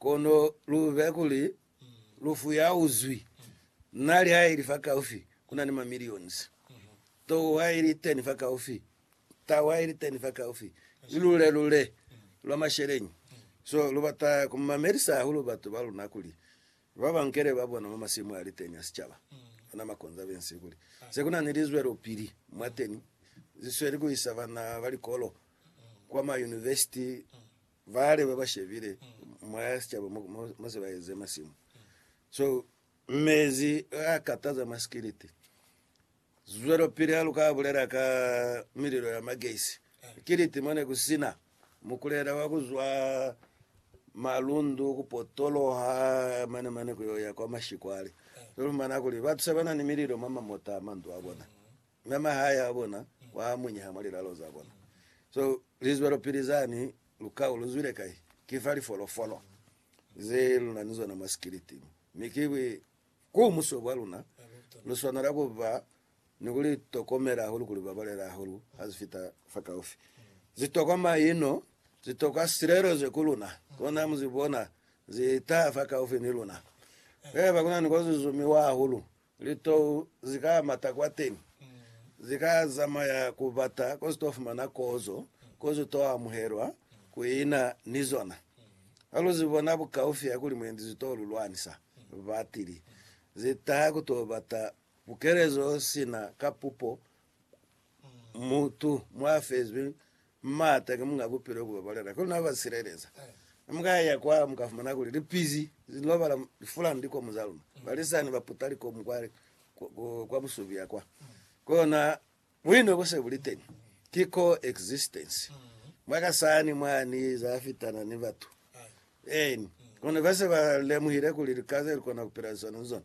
Kono lu be kuli lufu ya uzwi nali ha ili fa kaufi, ku na ni ma millions tou ha ili teni fa kaufi, tau ha ili teni fa kaufi, ni lule lule lwa masheleñi. So, lu bata ku mamelisa hahulu batu ba luna kuli ba ba nkele ba bona mwa masimu a liteni a sicaba, ona ma conservancy, kuli se ku na ni lizwelopili mwateni, zisweli ku isa bana ba likolo kwa ma university Vale ba ba shebile mwa ya sicaba mo se ba eze masimu. So mezi a kataza mwa sikiliti. Zwelopili ha lu ka bulela ka mililo ya magesi. Kiliti mo ne ku sina mukulela wa ku zwa malundu, ku potoloha mane mane ku yo ya kwa mashikwale. Lu fumana kuli batu se ba na ni mililo mwa mamota a mandu a bona. Mwa mahaya a bona kwa munyaha mwa lilalo za bona. So, lizwelopili zani, lukau lu zwile kai? Ki fa lifolofolo ze lu na ni zona mwa sikiliti. Mi ki ku muso bwa luna, lu swanela ku ba ni ku li tokomela hahulu, ku li babalela hahulu ha zi fita fakaufi. Zi tokwa maino, zi tokwa silelezo ku luna. Kona mu zi bona zi taha fakaufi ni luna. Haiba ku na ni ko zi zumiwa hahulu, Litou ze ka mata kwateñi ze ka zamaya ku bata ko ze to fumana kozo, ko ze to amuhelwa, ku ina ni zona. Ha lu ze bona bukaufi ha kuli mwendi ze to lu lwanisa, batili ze taha ku to bata bukelezo sina ka pupo. Mutu mwafezwi m'ata ki munga bupilo bwa balena kono n'a ba sileleza. Ne mu ka ya kwa mu ka fumana kuli lipizi li lobala lifula ni likomu za luna. Balisani ba puta likomu kwa busubia kwa. Kono buino bu se bu li teñi, ki co-existence mwa ka sani mwa ni za fitana ni batu. Eeni, kono ba se ba lemuhile kuli lika ze li kona ku pila liswani ni zona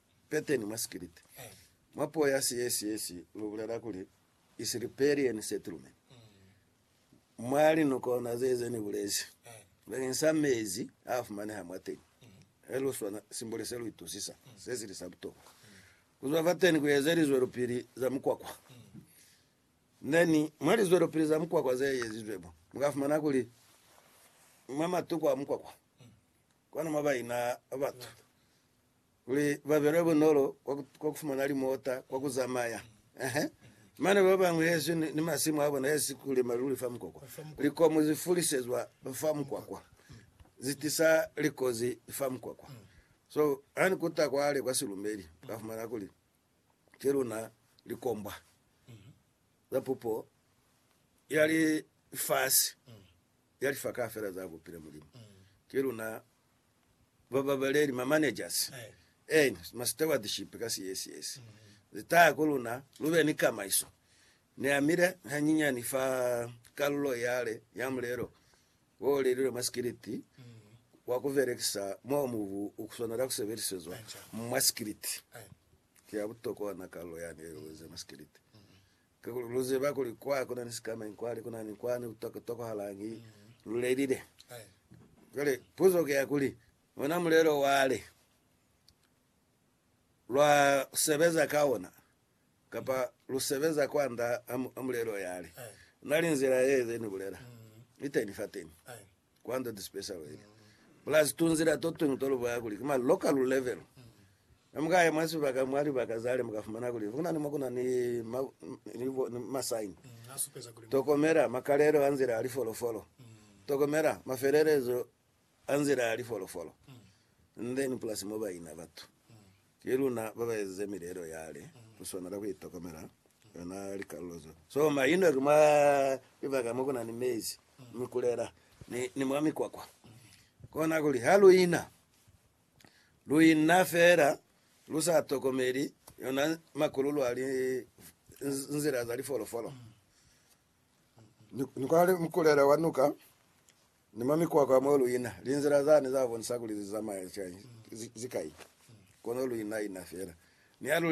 Peteni mwa sikiliti, mwa puo ya Siyesiyesi lu bulela kuli Isilipelieni Settlement. Mwa linukona ze ze ni bulezi bakeng sa mezi a fumaneha mwateñi, he lu swana simboli se lu itusisa se sili sa butokwa. Ku zwa fateni ku eze lizwelopili za mukwakwa. Ne ni mwa lizwelopili za mukwakwa ze ezizwe mo, mu ka fumana kuli mwa matuku a mukwakwa, kwani mwa ba ina batu. Kuli ba be lwa bunolo kwa ku fumana limota, kwa ku zamaya. Ehe. Mane ba bañwi hezwi ni masimu a bona hezi ku lima luli fa mukwakwa. Likomu zi fulisezwa fa mukwakwa, zi tisa likozi fa mukwakwa. So, ha ni kuta kwale kwa silumeli, ka fumana kuli ki luna likombwa za pupo ya lifasi, ya lifakaha fela za bupile Mulimu. Ki luna Ba babeleli, ma managers and ma stewardship ka CSS, ze taya ku luna lu be ni kamaiso. Ni amile hanyinyani fa kalulo yale ya mulelo wo lelilwe mwa sikiliti wa ku belekisa mo mubu u swanela ku sebelisezwa mwa sikiliti. Ki ya butokwa na kalulo yani ye lu eze mwa sikiliti. Kakuli lu ziba kuli kwa ku na ni sikamañi kwani, ku na ni kwani ku tokotokohalañi lu lelile. Cwale puzo ki ya kuli, ona mulelo wale lwa sebeza ka ona, kapa lu sebeza kwand'a mulelo yale? Na li nzila ye ze ni bulela iteni fateni. Kwando ti special ili, plus tunzila totuñwi tolubaya kuli ki ma local level. Ne mukaya mwa sibaka, mwa libaka zale, mukafumana kuli kuna ni mo kuna ni ma, ni bo, ni ma sign. Tokomela makalelo a nzila ya lifolofolo. Tokomela mafelelezo a nzila ya lifolofolo. And then plus mo baina batu. Ki luna babaezize milelo yale kuswanela kuitokomela yona likalulo zo so maino ki mwa libaka mo kunani mezi, mikulela ni, ni mwa mikwakwa. Kona kuli ha luina, luina fela lusa tokomeli yona makululu ali nzila za lifolofolo. Ni, ni kwa mkulela wa nuka Ni mwa mikwakwa ya mwa luina, linzila zani za bonisa kuli li zamaya cwañi? Ki zikai? Kono luina ina fela. Ni ha lu